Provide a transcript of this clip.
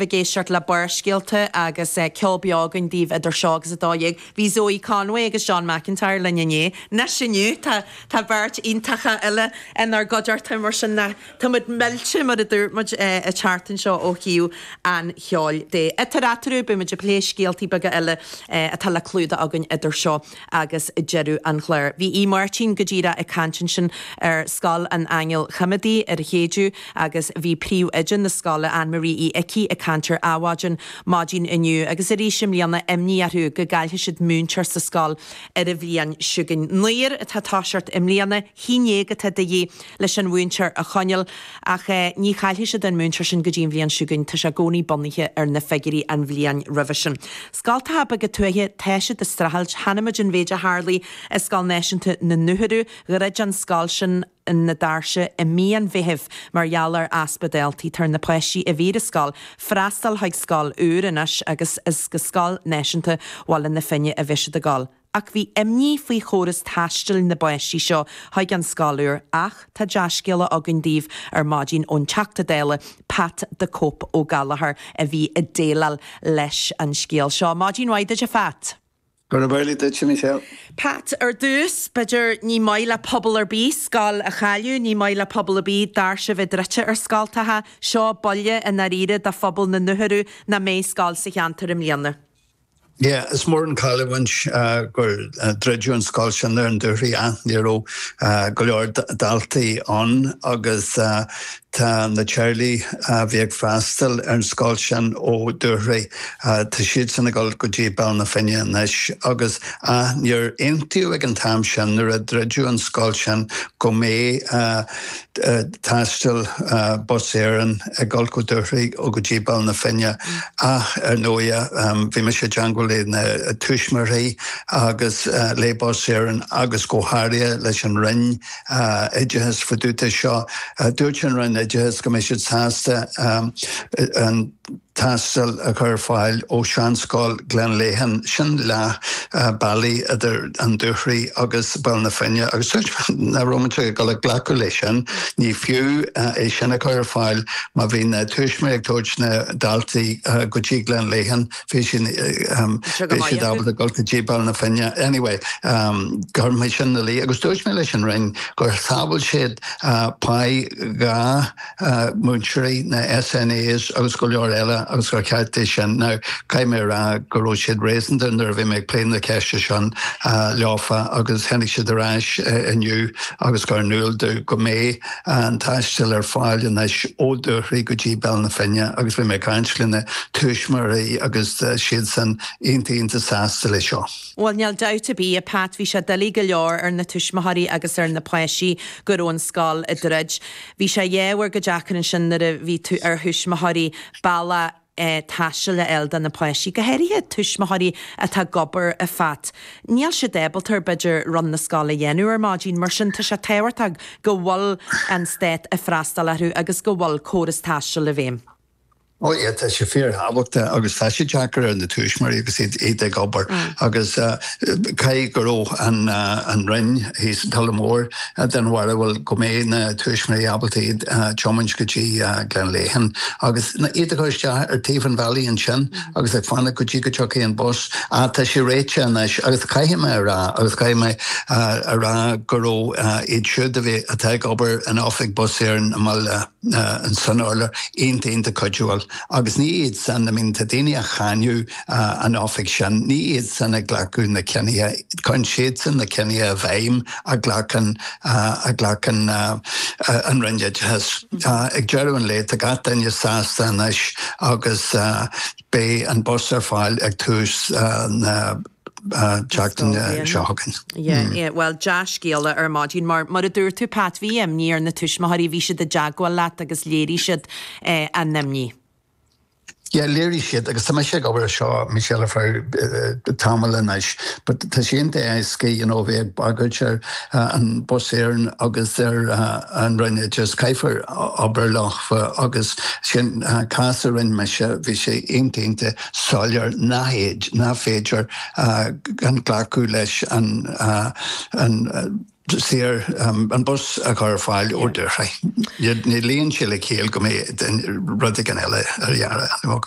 ag éisteacht le Barrscéalta agus ceol beo againn daoibh idir seo agus a dó dhéag. Bhí Zoe Conway agus John McIntyre linn inné. 'Nois inniu tá beirt iontacha eile inár gcuideachta mar sin tá muid millte mar a dúirt muid an tseachtain seo ó thaobh an cheoil de. Idir eatarthu beidh muid ag plé scéaltaí beaga eile atá le clúdach againn idir seo agus deireadh an chláir. Bhí Aodh Máirtín go díreach ag caint ansin ar Scoil an Aingil Choimhéadaí ar an Chéideadh agus bhí príomhoide na scoile, Anne Marie Uí Icí, ag caint ar Adhmhaidin maidin inniu agus arís i mbliana, imní orthu go gcaillfidh siad múinteoir sa scoil ar an bhliain seo chugainn. Naonúr atá ag toiseacht i mbliana, chinn déag atá de dhíth leis an mhúinteoir a choinneáil ach ní chaillfidh siad an múinteoir sin go dtí an bhliain seo chugainn, tá sé i gcónaí bunaithe ar na figiúirí an bhliain roimhe sin. Scoilteacha beaga tuaithe, tá siad ag streachailt, chonaic muid an méid a tharlaigh i Scoil Náisiúnta na nDúchoradh, dhruid an scoil sin na doirse i mí an Mheithimh mar gheall ar easpa daltaí, tá ar na páistí a bhí ar an scoil freastal chuig scoil úr anois agus is go Scoil Náisiúnta Bhaile na Finne a bheidh siad ag dul. Ach bhí imní faoi chóras taistil na bpáistí seo chuig an scoil úr, ach tá dea-scéala againn daoibh ar maidin ón Teachta Dála, Pat 'The Cope' Ó Gallchóir, a bhí ag déileáil leis an scéal seo. Maidin mhaith duit, a Phat! Gurab amhlaidh duit, a Michelle! Pat, Ar dtús, b'fhéidir, ní maith le pobal ar bith scoil a chailleadh, ní maith le pobal ar bith doirse a bheith druidte ar scoil tuaithe. Seo buille, i ndáiríre, do phobal na nDúchoradh, nach mbeidh scoil sa cheantar i mbliana. Yeah, is mór an cailliúint gur druideadh an scoil sin ar an Dúchoraidh ach ní raibh go leor daltaí ann agus tá na teaghlaigh a bhí ag freastal ar an scoil sin ón Dúchoraidh tá siadsan ag dul go dtí Baile na Finne anois agus ach níor aontaíodh ag an t-am sin nuair a druideadh an scoil sin go mbeidh taisteal Bus Éireann ag dul ón Dúchoraidh go dtí Baile na Finne ach ar ndóighe bhí mise i dteangmháil le na tuismitheoirí agus le Bus Éireann agus go háirithe leis an Roinn Oideachais fadúda seo. Dúirt an Roinn Oideachais go mbeidh siad sásta an. taisteal a chur ar fáil ó Sheanscoil Ghleann Léithín, sin leath bealaí idir an Dúchoraidh agus Baile na Finne, agus toisc nach raibh muid ag dul ag glacadh leis sin, ní fiú é sin a chur ar fáil. Má bhí na tuismitheoirí ag tabhairt na daltaí go dtí Gleann Léithín, bhí siad, bhí siad ábalta dul go dtí Baile na Finne. Anyway, chuir mé sin ina luí agus dúirt mé leis an Roinn gur shábháil siad páigh dhá. múinteoirí, na SNAs agus go leor eile agus gur cheart é sin. Now, caithfidh mé a rá go raibh siad réasúnta nuair a bhí mé ag plé na ceiste sin leofa agus tháinig siad ar ais inniu agus chuir in iúl domh go mbeidh an taisteal ar fáil anois ó Dhúchoraidh go dtí Baile na Finne agus bhí mé ag caint leis na tuismitheoirí agus tá siadsan iontach iontach sásta le seo. Bhuel, níl dabht ar bith, a Phat, bhí sé doiligh go leor ar na tuismitheoirí agus ar na páistí go raibh an scoil ag druid. Bhí sé dhá uair chomh deacair ansin nuair a bhí ar thuismitheoirí bealach taistil a fháil do na páistí, go háirithe tuismitheoirí atá ag obair, a Phat. Níl siad ábalta b'fhéidir run na scoile a dhéanamh ar maidin, mar sin tá sé tábhachtach go bhfuil an stát ag freastal orthu agus go bhfuil córas taistil i bhfeidhm. Ó yeah, tá sé fíorthábhachtach agus tá sé deacair ar na tuismitheoirí agus iad iad ag obair agus caithfidh go raibh an an Roinn sa Tulach Mhór den bharúil go mbeadh na tuismitheoirí ábalta iad a thiomáint go dtí Gleann Léithín agus iad a chur isteach ar taobh an bhealaigh ansin agus ag fanacht go dtí go dtiocfadh an bus ach tá sé réitithe anois agus caithfidh mé a rá agus caithfidh mé a rá go raibh iad siúd a bhí atá ag obair in oifig Bus Éireann i mBaile an Srath an Urláir iontach iontach cuidiúil, agus ní iad san, I mean, tá daoine ag cáineadh an oifig sin, ní iad san a ghlacann na cinnithe, cuireann siadsan na cinnithe i bhfeidhm a ghlacann, a ghlacann an Roinn Oideachais. Ag deireadh an lae, tá gach duine sásta anois agus. Beidh an bus ar fáil ag tús na seachtaine seo chugainn. Yeah, yeah, bhuel, dea-scéala ar maidin mar, mar a dúirt tú Pat, bhí imní ar na tuismitheoirí, bhí siad i dteagmháil leat agus léirigh siad a n-imní. Yeah, léirigh siad agus tá mise ag obair ar seo, Michelle, ar feadh tamaill anois but tá sé iontach éasca, you know, bheith ag bagairt ar an Bhus Éireann agus ar an Roinn Oideachais, caithfear, obair leofa agus sin an cás a rinne mise, bhí sé iontach iontach soiléir nach féidir gan glacadh leis an saor, an bus a chur ar fáil ó Dhúchoraidh. Ní luíonn sé le ciall go mbeadh rud éigin eile ar iarraidh acu.